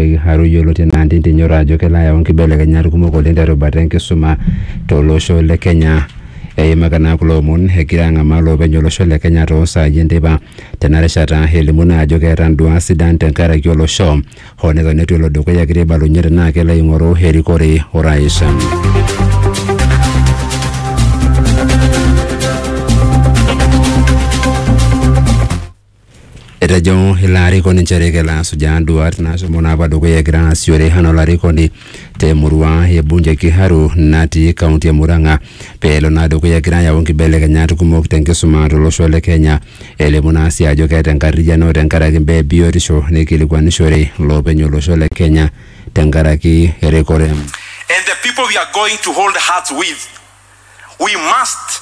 Kiharu yioloti anaa Ndindi Nyoro ajo kelo ayau nkibelekenyat kumok oleng terubata enkisuma tolosho le Kenya. Eimaka naa kulo omon egira ang'amaa loopeny olosho le Kenya toosaai enteipa tena rishata elimu naa ajo keeta nduaat sidan tenkaraki olosho hoo neton eitu elo dukuya egira aibalunye tenaa kelo aing'oru erikore orais. Etejo ilo arikoni nchere kelo asujaa nduat naashomo naapa dukuya egira aasishore anaa olarikoni te murua e bunge Kiharu natii kaunti e Murang'a pee elo naa dukuya egira ayau nkibelekenyat kumok te nkisuma tolosho le Kenya. Elimu naa sii ajo keeta enkarriyiano tenkaraki imbaa e biotisho neikilikuanishore loopeny olosho le Kenya tenkaraki erikore. and the people we are going to hold hearts with we must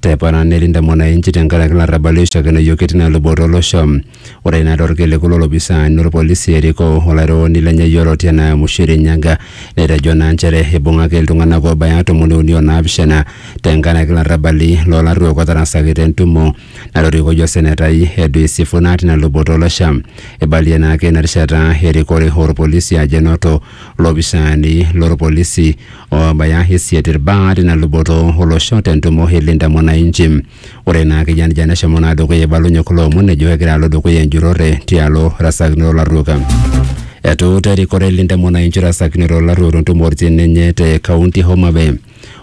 Tepona nilinde mwananchi tenkaraki larrabali oishakenoyio ketii ina luboto olosho. Ore ina torkiliku lolopisaani lolpolisi Eriko olairriwoni lenye yioloti enaa Mushiri Nyaga netejo naa nchere eibung'aki iltung'anak oobaya tomoni uni o naapishana tenkaraki larrabali loo larruok otarasaki te ntumo natorikoyie osenetai Edwin Sifuna tina luboto olosho. Eibalie naa ake ina rishata erikore olpolisi ajo enoto lopisaani lolpolisi oobaya isiet irbaa tina luboto olosho tentumo e Linda Mwananchi. Ore naa kijanija neshomo naa dukuya eibalunye kulo omon ejo kegira alo dukuya enjurore tialo rasakinoto olarruok. Etuuta erikore Linda Mwananchi rasakinoto olarruok tentumoritin enye te kaunti e Homa Bay.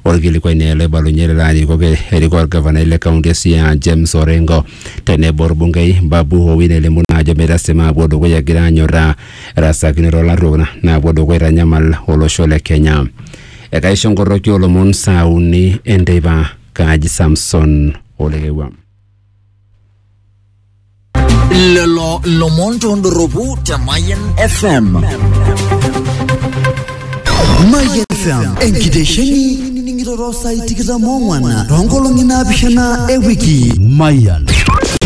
Orkilikuai naa ele oibalunye lelo arikok erikoo orgavanai le kaunti e Siaya James Orengo tenebo orbungei Babu Owino elimu naa ajo metasima aapuo dukuya egira anyorraa rasakinoto olarruok na- naapuo dukuya aitanyamal olosho le Kenya. Ekaisho nkorroki olomon saa uni enteipa Kaji Samson Olekewua. lelo lomon tondoropu te Mayan FM. Mayian FM enkitesheni nining'iroro saai tikitam ong'wan toonkolong'i naapishana e wiki. Mayian.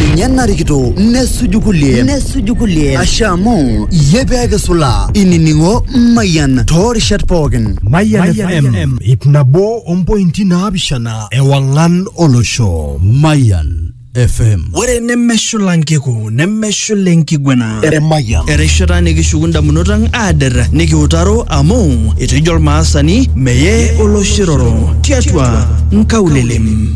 Ninye narikito nesuju kulie nesuju kulie asha amu iyie pee kisula inining'o Mayian toorishat pookin. Mayian FM ip nabo ompointi naapishana ewang'an olosho. Mayian. FM. ore nemeshula nkiku nemeshula enkiguena Eremayian. erishata nikishuku ndamunot ang aader nikiutaro amu etejo olmaasani meye oloshiroro tiatua nkaulelem